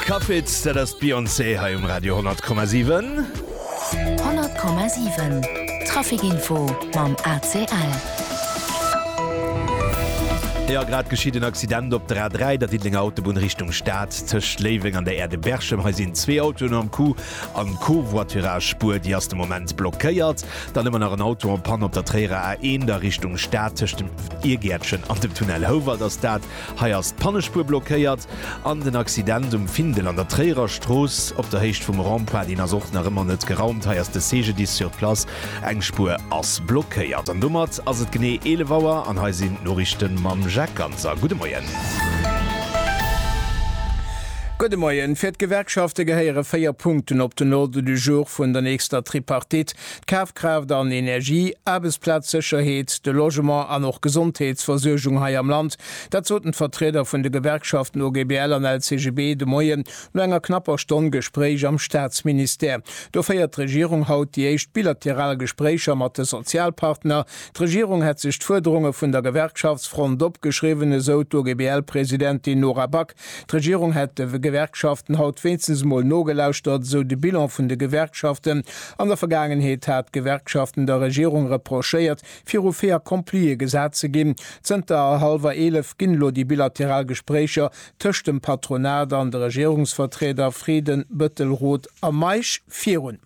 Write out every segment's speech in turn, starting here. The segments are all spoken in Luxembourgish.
Cuffits, dat ass d'Beyoncé hei um Radio 10,7. 10,7 Trafikinfo mam ACL. Jo, grad geschitt en Accident op der A3, der Diddelenger Autobunn Richtung Stad, tëscht Léiweng an der Aire de Berchem. Hei sinn zwee Autoen am Coup an d'Covoiturage-Spuer, déi ass de Moment blockéiert. Dann hu mer nach en Auto en Panne op der Tréierer A1, der Richtung Stad, tëscht dem Irgäertchen an dem Tunnel Houwald ass dat. Hei ass d'Pannespuer blockéiert an den Accident um Findel an der Tréierer Strooss op der Héicht vum Rond-Point, deen ass och nach ëmmer net geraumt. Hei ass de CGDIS sur place, eng Spuer ass blockéiert. An domat ass et genee 11 Auer an hei sinn d'Noriichte mam Jacques Ganser. Gudde Moien. Gudde Moien. Fir d'Gewerkschafte gehéiere véier Punkten op den Ordre du jour vun der nächster Tripartite. d'Kafkraaft an Energie, Aarbechtsplazsécherheet, de Logement an och Gesondheetsversuergung hei am Land. Dat soten d'Vertrieder vun de Gewerkschaften OGBL an LCGB de Moien no enger knapper Stonn Gespréich am Staatsministère. Do féiert d'Regierung haut déi éischt bilateral Gespréicher mat de Sozialpartner. D'Regierung hätt sech d'Fuerderunge vun der Gewerkschaftsfront opgeschriwwen, esou d'OGBL-Presidentin Nora Back. D'Regierung hätt de Gewerkschaften haut wéinstens emol nogelauschtert, esou de Bilan vun de Gewerkschaften. An der Vergaangenheet hat d'Gewerkschaften der Regierung reprochéiert, viru fait accompli gesat ze ginn. Zënter hallwer eelef ginn elo déi bilateral Gespréicher tëscht dem Patronat an de Regierungsvertrieder Frieden, Bëttelroth a Meisch virun.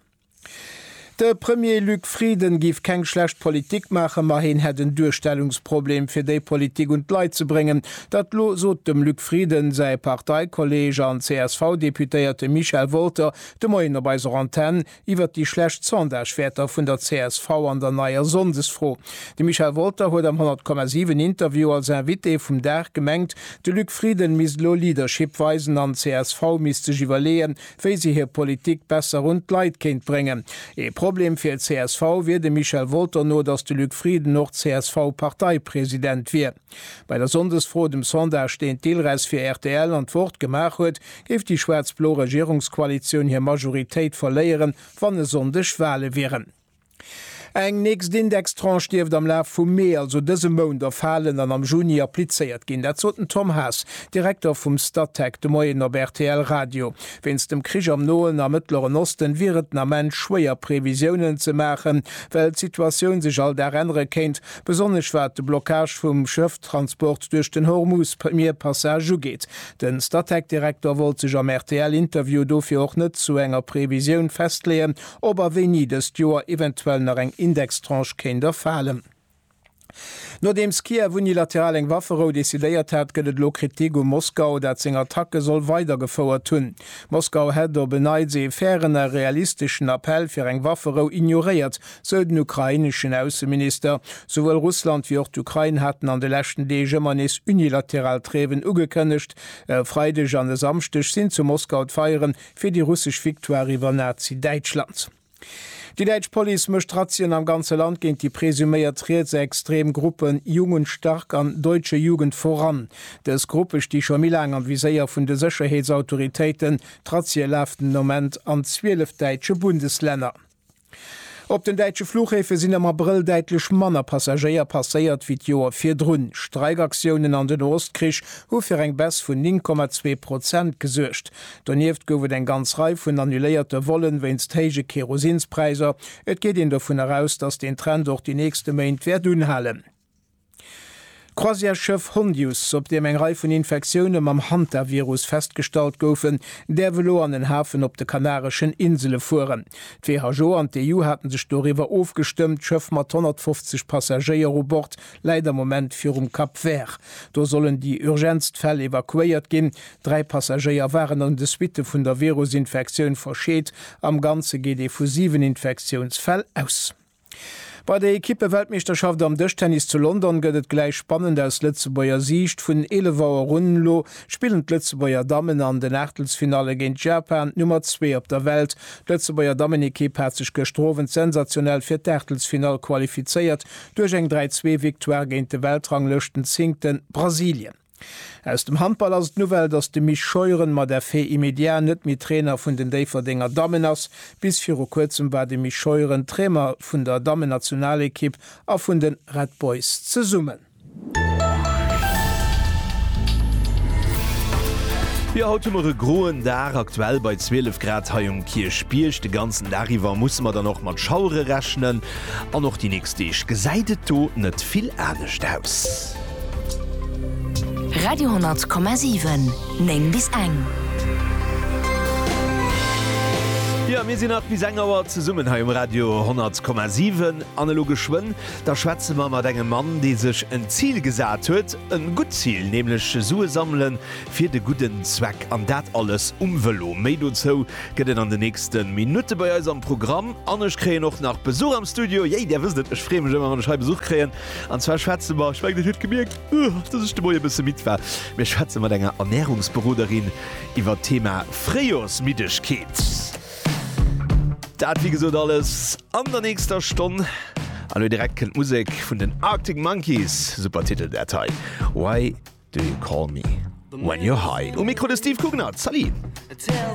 De Premier Luc Frieden giff keng schlecht Politik maachen, ma heen hätt en Duerstellungsproblem fir déi Politik un d'Leit ze bréngen. Dat lo sot dem Luc Frieden säi Parteikolleeg an CSV-Deputéierte Michel Wolter de Moien op eiser Antenn iwwert déi schlecht Sondagewäerter vun der csv an der neier Sonndesfro. De Michel Wolter huet am 100,7 Interview als Invité vum Dag gemengt, de Luc Frieden misst lo Leadership weisen an csv misst sech iwwerleeën, wéi se hir Politik besser un d'Leit kéint bréngen. Ee Problem fir csv wier dem Michel Wolter no, datt de Luc Frieden och CSV-Parteipresident wier. Bei der Sonndesfro, dem Sondage deen d'ILRES fir rtl an d'Wort gemaach huet, géif déi schwaarz-blo Regierungskoalitioun hir Majoritéit verléieren, wann e Sonndeg Wale wieren. Eng nächst Indextranche dierft am Laf vum Mee, also dësem Mount, erfalen an am Juni applizéiert ginn. Dat sot den Tom Haas, Direkter vum Statec, de Moien op rtl Radio. Wéinst dem Krich am Noen a Mëttleren Osten wier et den Ament schwéier Previsiounen ze maachen, well d'Situatioun sech all Dag ännere kéint, besonnesch wat de Blockage vum Schëfftransport duerch den Hormuz-Mierpassage ugeet. De Statec-Direkter wollt sech am RTL-Interview dofir och net zu enger Previsioun festleeën, ob a wéini dëst Joer eventuell nach eng Indextranche kéint erfalen. Nodeems Kiew unilateral eng Wafferou decidéiert hat, gëtt et elo Kritik u Moskau, dat seng Attacke soll weidergefouert hunn. Moskau hätt op en Neits ee fairen a realisteschen Appell fir eng Wafferou ignoréiert, sou den ukraineschen Ausseminister. Souwuel Russland wéi och d'Ukrain haten an de leschten Deeg ëmmer nees unilateral Trêven ugekënnegt. E Freideg an e Samschdeg sinn zu Moskau d'Feieren fir déi russesch Victoire iwwer Nazi-Däitschland. Déi däitsch Police mécht Razzien am ganze Land géint déi presuméiert rietsextrem Gruppen Jugend stark an Deutsche Jugend voran. Dës Gruppe sti scho méi laang am Viséier vun de Sécherheetsautoritéiten. D'Razzie lafen den Ament an 12 däitsche Bundeslänner. Op den däitsche Flughäfe sinn am Abrëll däitlech manner Passagéier passéiert wéi d'Joer virdrun. Streikaktiounen an den Nohostkrich hu fir eng Baisse vun 9,2 Prozent gesuergt. Donieft gouf et eng ganz Rei vun annuléierte Vollen wéinst héije Kerosinspräisser. Et geet een dovun eraus, datt deen Trend och déi nächste Méint wäert unhalen. D'Croisièresschëff Hondius, op deem eng Rei vun Infektioune mam Hantavirus festgestallt goufen, däerf elo an en Hafen op de Kanareschen Insele fueren. D'WHO an d'EU hate sech doriwwer ofgestëmmt. D'Schëff mat 150 Passagéier u Bord läit am Moment virum Cap Vert. Do sollen déi urgentst Fäll evakuéiert ginn. Dräi Passagéier waren an de Suitte vun der Virusinfektioun verscheet. Am Ganze geet ee vu siwen Infektiounsfäll aus. Bei der Ekippe-Weltmeeschterschaft am Dëschtennis zu London gëtt et gläich spannend aus Lëtzebuerger Siicht. Vun 11 Auer un elo spillen d'Lëtzebuerger Dammen an den Aachtelsfinalle géint Japan, d'Nummer zwee op der Welt. D'Lëtzebuerger Dammenekipp hat sech gëschter Owend sensationell fir d'Aachtelsfinall qualifizéiert duerch eng 3-2 Victoire géint de Weltranglëschtenzéngte Brasilien. Aus dem Handball ass et d'Nouvelle, datt de Mich Scheuren mat effet immédiat net méi Trainer vun den Déifferdenger Dammen ass. Bis viru kuerzem war de Mich Scheuren Trainer vun der Dammennationalekipp a vun de Red Boys zesummen. Jo haut hu mer e groen Dag, aktuell bei 12 Grad hei um Kierchbierg. De ganzen Dag iwwer musse mer dann och mat Schauere rechnen an och déi nächst Deeg gesäit et do net vill anescht aus. Radio,7 9 bis eng. Jo mir sinn nach bis eng Auer zesummen hei um Radio 10,7 an elo geschwënn da schwätze mer mat engem Mann dee sech en Zil gesat huet, en gutt Zil, nämlech Sue sammelen fir de gudden Zweck an dat alles um Vëlo. Méi dozou gëtt et an de nächste Minutte bei eis am Programm an ech kréien och nach Besuch am Studio. Yay där wësst et, ech freeë mech ëmmer wann ech hei Besuch kréien. An zwar schwätze mer, ech mengen et huet gemierkt, dass ech de Moien e bësse midd war, mir schwätze mat enger Ernärungsberoderin iwwert d'Thema Fréijoersmiddegkeet. Dat wéi gesot alles an der nächster Stonn. An elo direkt kënnt d'Musek vun den Arctic Monkeys, super Titel dat hei, Why do you call me when you're high? Um Mikro de Steve Coognard, Salut!